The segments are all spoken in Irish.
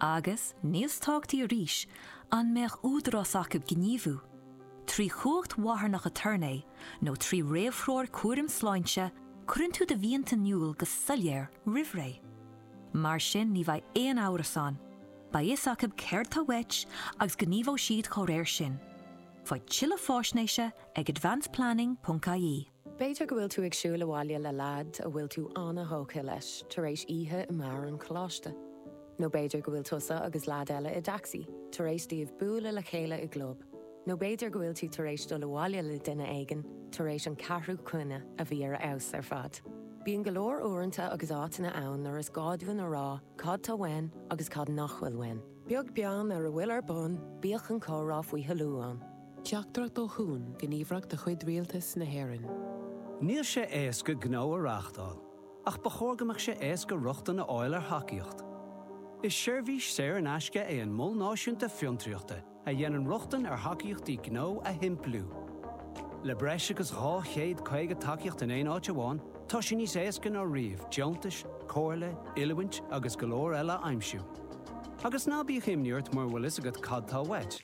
Agus, níos tábhactaí arís, an mbeadh údarás acu gníomhú, trí chumhacht mharthanach aturnae nó trí réamhthreoir cúraim sláinte, cuireann tú do mhianta in iúl go soiléir roimhré. Mar sin ní bheidh aon amhras ann, beidh a fhios acu céard tá uait agus gníomhóidh siad dá réir sin. Faigh tuilleadh fáisnéise ag advanceplanning.ie. B'fhéidir go bhfuil tú ag siúl abhaile le leaid a bhfuil tú an-thógtha leis tar éis oíche i mbeár an choláiste. Nó b'fhéidir go bhfuil tusa agus leaid eile i dtacsaí tar éis daoibh bualadh le chéile i gclub. Nó b'fhéidir go bhfuil tú tar éis dul abhaile le duine éigin tar éis an ceathrú coinne a bhí ar a fheabhas ar fad. Bíonn go leor uaireanta agus áiteanna ann nuair is gá dúinn a rá cad tá uainn agus cad nach bhfuil uainn. Beag beann ar a bhfuil ar bun, bíodh an comhrá faoi thoiliú ann. Teachtaireacht ó Chuan, Gníomhaireacht de chuid Rialtas na hÉireann. Níl sé éasca gnó a reáchtáil, ach ba chóir go mbeadh sé éasca rochtain a fháil ar thacaíocht. Is seirbhís saor in aisce é an Mol Náisiúnta Fiontraíochta a dhéanann rochtain ar thacaíochtaí gnó a shimpliú. Le breis agus 250 tacaíocht in aon áit amháin, tá sé níos éasca ná riamh deontais, comhairle, oiliúint agus go leor eile a aimsiú. Agus ná bíodh imní ort mura bhfuil a fhios agat cad tá uait.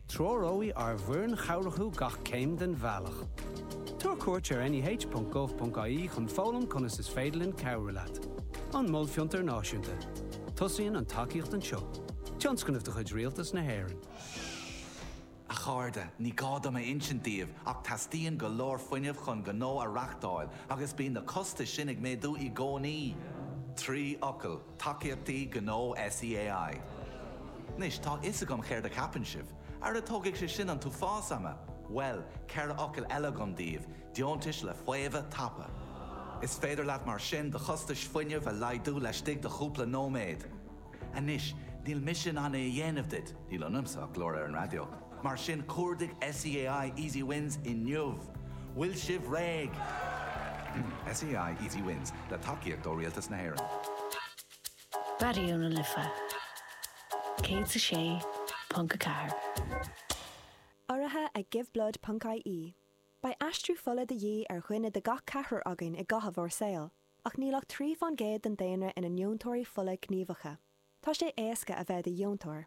Treoróidh ár bhfoireann chabhrach thú gach céim den bhealach. Tabhair cuairt ar neh.gov.ie chun foghlaim conas is féidir linn cabhrú leat. An Mol Fiontair Náisiúnta. Tosaíonn an tacaíocht anseo. Tionscnamh de chuid Rialtas na hÉireann. A chairde, ní gá dom a insint daoibh ach teastaíonn go leor fuinnimh chun gnó a reáchtáil agus bíonn na costais sin ag méadú i gcónaí. Trí fhocal. Tacaíochtaí Gnó SEAI. Anois, tá a fhios agam céard a cheapann sibh. Ara tógfaidh sé sin an t-uafás ama! Bhuel, ceithre fhocal eile agam daoibh, deontais le faomhadh tapa. Is féidir leat mar sin do chostais fuinnimh a laghdú laistigh de chúpla nóiméad. Anois, níl mise in ann é a dhéanamh duit, níl ionamsa ach glór ar an raidió. Mar sin, cuardaigh SEAI Easy Wins inniu! Bhfuil sibh réidh? SEAI Easy Wins, le tacaíocht ó Rialtas na hÉireann. Raidió na Life 106.4. Urraithe ag giveblood.ie, beidh aistriú fola de dhíth ar dhuine de gach ceathrar againn i gcaitheamh ár saoil, ach níl ach trí fán gcéad den daonra ina ndeontóirí fola gníomhacha. Tá sé éasca a bheith i do dheontóir.